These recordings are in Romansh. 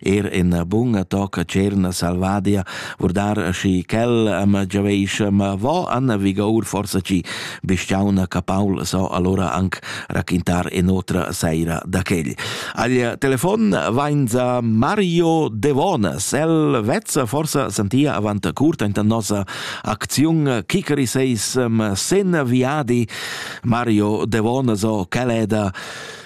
er ina bunga tocca cerna salvadia, vurdar schi quel am giaveisce, ma vo Anna Vigour forsa ci bestiauna capaul so allora anc raquintar in otra saira da quel. Al telefon vainza Mario Devonas, el vezza forsa sentia avant curt inta nosa acziun Kikeri seisem sen viadi Mario Devonas o Caleda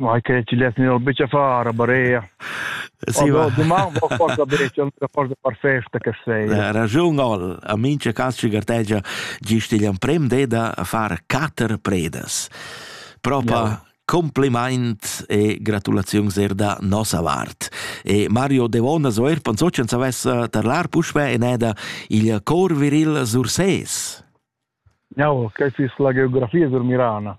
Ma che ci les nel bice far barea. Sì, va. Doman va forza bice, una forza perfetta che sei. Ragion al, a mincha cas ci gartegia gisti l'emprem de da far quatter predas. Propa ja. Kompliment e gratulaziun sehr da nossa vart. E Mario Devona so er pensocen savessa tarlar puspe in eda il cor viril surses. Ja, che si la geografia sur Mirana.